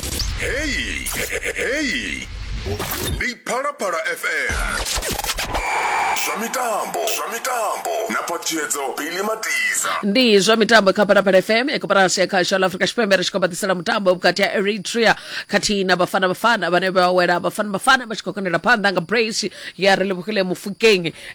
Hei, hei. Ndi Phalaphala FM. Zwa mitambo, zwa mitambo na patshedzo Billy Matiza. ndi zwa mitambo kha phalaphala fm ekoporasi ya kha shango afrika tshipembe ri tshi khou baḓisela mutambo vhukati ha eritrea khathihi na bafana bafana vhane vha wela bafana bafana vha tshi khou konela phanḓa nga brace ya relebogile mufukeng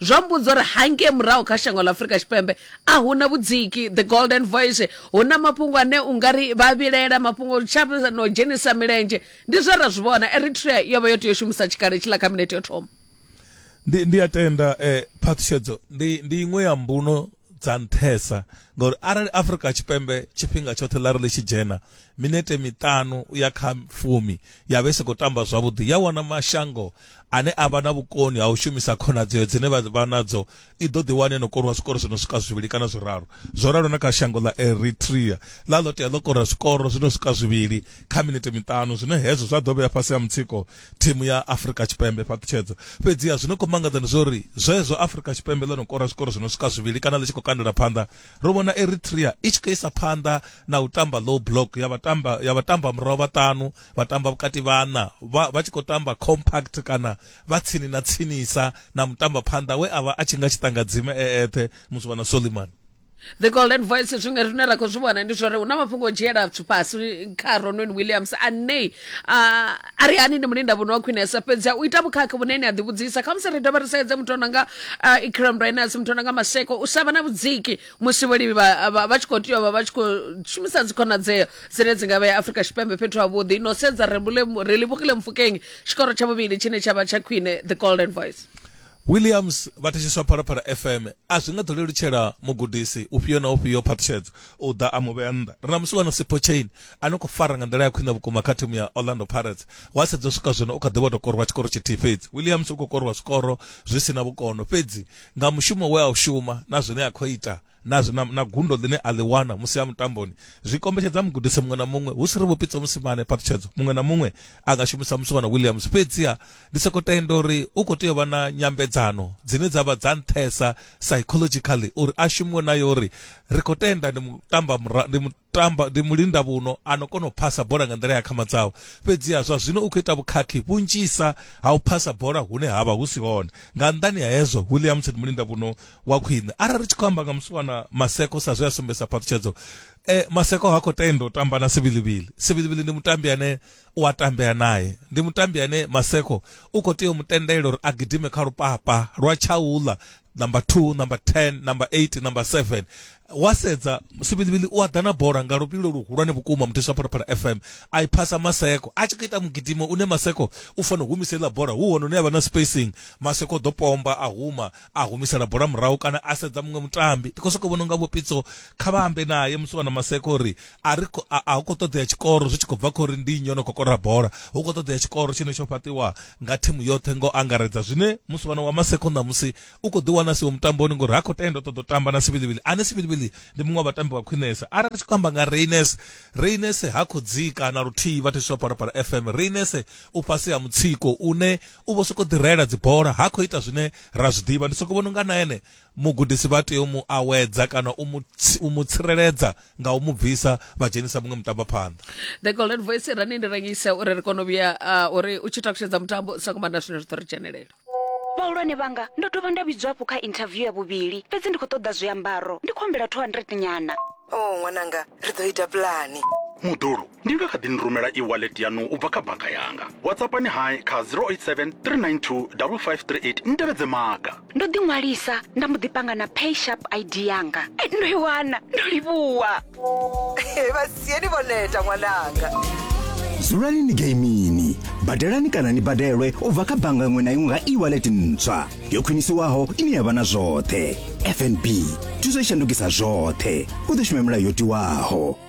Zwo mmbudza uri hangei murahu kha shango ḽa Afrika Tshipembe a hu na vhudziki the golden voice hu na mafhungo ane u nga ri vha vhilela mafhungo tsha no dzhenisa milenzhe ndi zwe ra zwi vhona Eritrea yo vha yo tea u shumisa tshikhala tshiḽa kha minete yo thoma Ndi, ndi a tenda, eh, phaṱhutshedzo ndi, ndi iṅwe ya mbuno dza nṱhesa ngauri arali afurika tshipembe tshifhinga tshoṱhe ḽa ri ḽi tshi dzhena minete miṱanu u ya kha fumi ya vhe si khou tamba zwavhuḓi ya wana mashango ane a vha na vhukoni ha u shumisa khonadzeo dzine vha vha nadzo i ḓo ḓi wane no koriwa zwikoro zwi no swika zwivhili kana zwiraru zwo ralo na kha shango ḽa eritrea ḽa ḽo tea ḽo kora zwikoro zwi no swika zwivhili kha minete miṱanu zwine hezwo zwa ḓo vhea fhasi ha mutsiko thimu ya Afrika Tshipembe fhaṱutshedzo fhedziha zwino khou mangadza ndi zwo ri zwezwo Afrika Tshipembe ḽo no kora zwikoro zwi no swika zwivhili kana ḽi tshi khou kandela phanḓa ro vhona Eritrea i tshi khou isa phanḓa na u tamba low block ya vhatamba ya vhatamba murahu vhaṱanu vhatamba vhukati vhana vha vha tshi khou tamba compact kana vha tsini na tsinisa na mutamba phanḓa we avha a tshi nga tshi ṱangadzime e eṱhe musi vha na Soliman the golden voice zwiṅwe zwine ra khou zwi vhona ndi zwori hu na mafhungo o dzhiela zwithu fhasi kha ronon williams ane ah, a ri hani ndi mulinda vhuno wa khwinesa fhedzi u ita vhukhakhi vhune ni a ḓivhudzisa kha musi ri dovha ri sedze muthu ono nga ah, ikram rainers muthu ono nga maseko u sa vha na vhudziki musi vholivi vha vha- vha tshi khou tea u vha vha tshi khou shumisa dzikhonadzeo dzine dzi nga vhea afrika tshipembe fhethu havhuḓi no sedza rebule- relebogile mfukeng tshikoro tsha vhuvhili tshine tsha vha tsha khwine the golden voice Williams vha thetshiswa Phalaphala FM a zwi nga ḓo lelutshela mugudisi ufhio na ufhio phaṱhutshedzo u ḓa a mu vhea nnḓa. Ri na musiwana Sipho Chain a no khou fara nga nḓila ya khwine vhukuma kha thimu ya Orlando Pirates. Wa sedza u swika zwino u kha ḓi vho tou korwa tshikoro tshithihi fhedzi. Williams u khou korwa zwikoro zwi si na vhukono fhedzi nga mushumo we a u shuma na zwine a khou ita, na, na, na gundo ḽine a ḽi wana musi a mutamboni zwi kombetshedza mugudisi muṅwe na muṅwe hu si ri vhupitsa musimane phaṱhutshedzo muṅwe na muṅwe a nga shumisa musiwana williams fhedziha ndi soko tenda uri u khou tea u vha na nyambedzano dzine dza vha dza nṱhesa psychologically uri a shumiwe nayo uri ri khou tenda ndi mutamba ndi tamba ndi mulinda vhuno ano kona u phasa bola nga nḓila ya khama dzawe fhedziha zwa zwino u khou ita vhukhakhi vhunzhisa ha u phasa bola hune havha hu si hone nga nnḓani ha hezwo williams ndi mulinda vhuno wa khwine arali ri tshi khou amba nga musiwana maseko sa zwe a sumbedzisa phaṱhutshedzo e, maseko ha khou tenda u tamba na sivilivili sivilivili ndi mutambi ane u a tambea naye ndi mutambi ane maseko u khou tea u mu tendela uri a gidime kha lupapa lwa tshaula number 2 number 10 number 8 number 7 wa sedza sivhilivhili u a ḓa na bola nga luvhilo luhulwane vhukuma muteswa phalaphala fm a i phasa maseko a tshi khou ita mugidimo une maseko u fanela u humisa iḽa bola hu hone une avha na spacing maseko ḓo pomba a huma a humisela bola murahu kana a sedza muṅwe mutambi ndi khou sokou vhona unga vhopitso kha vha ambe naye musi wana maseko uri a ri kho- a a hu khou ṱoḓea tshikoro zwi tshi khou bva kha uri ndi nnyi o no khou kora bola hu khou ṱoḓea tshikoro tshine tsho fhaṱiwa nga thimu yoṱhe ngo angaredza zwine musiwana wa maseko ṋamusi u khou ḓiwana siwo mutamboni ngori ha khou tenda u ṱoḓa u tamba na sivilivili ane sivilivili ndi muṅwe wa vhatambi vha khwinesa arali ri tshi khou amba nga reines reines ha khou dzika na luthihi vha thetshelwa phalaphala fm reines u fhasi ha mutsiko une u vho sokou ḓirela dzibola ha khou ita zwine ra zwi ḓivha ndi sokou vhona unga na ene Mugudisi vha tea u mu awedza kana u mu, u mu tsireledza nga u mu bvisa vha dzhenisa muṅwe mutambaphanḓa. The Golden Voice ra ni ndi rengise uri ri kone u vhuya uh, uri u tshi takutshedza mutambo sa kumbanda zwine zwi ḓo ri dzhenelela. Vhahulwane vhanga, ndo dovha nda vhidzwa hafhu kha inthaviu ya vhuvhili, fhedzi ndi khou ṱoḓa zwiambaro. Ndi khou humbela 200 nyana. Oh, ṅwananga, ri ḓo ita pulane. Mudulu, Ni nga kha ḓi ni rumela e-wallet yaṋu u bva kha bannga yanga. WhatsAppani hai kha 087 392 5538 ni tevhedze maga. Ndo ḓiṅwalisa nda mbo ḓi panga na PaySharp ID yanga. Ndo i wana! Ndo livhuwa! Vha sieni vho neta ṅwananga. Dzulani ni geimini, badelani kana ni badelwe u bva kha bannga iṅwe na iṅwe nga e-wallet ntswa yo khwinisiwaho ine ya vha na zwoṱhe. FNB, thuso i shandukisa zwoṱhe. U ḓo shuma milayo yo tiwaho.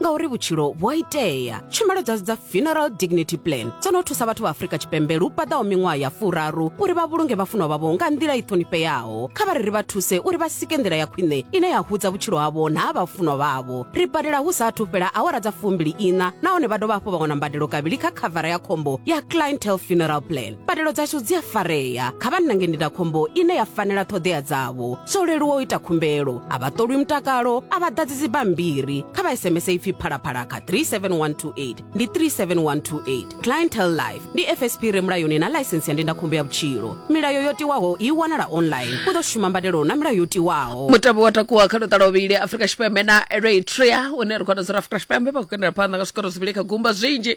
ngauri vhutshilo vhu a itea tshumelo dzashu dza funeral dignity plan dzo no thusa vhathu vha afrika tshipembe lu paḓaho miṅwaha ya furaru uri vha vhulunge vhafunwa vhavho nga nḓila i ṱhonifheaho kha vha ri ri vha thuse uri vha sike nḓila ya khwine ine ya hudza vhutshilo havho na ha vhafunwa vhavho ri badela hu sa athu fhela awara dza fumbili iṋa nahone vha dovha hafhu vha wana mbadelo kavhili kha khavara ya khombo ya clientele funeral plan mbadelo dzashu dzi a farea kha vha nange ndindakhombo ine ya fanela ṱhoḓea dzavho zwo leluwa u ita khumbelo a vha ṱolwi mutakalo a vha ḓadzi dzibammbiri kha vha sms ipfi phalaphala kha 37128 ndi 37128 clientel life ndi fsp re mulayoni na ḽaisensi ya ndindakhombo ya vhutshilo milayo yo tiwaho i wanala online u ḓo shuma mbadelo na milayo yo tiwaho mutambo wa takuwa kha luṱa lwovhili afrika tshipembe na eritrea une ri khou wana zwa uri afrika tshipembe vha khou kendela phanḓa nga zwikoro zwivhili kha gumba zwinzhi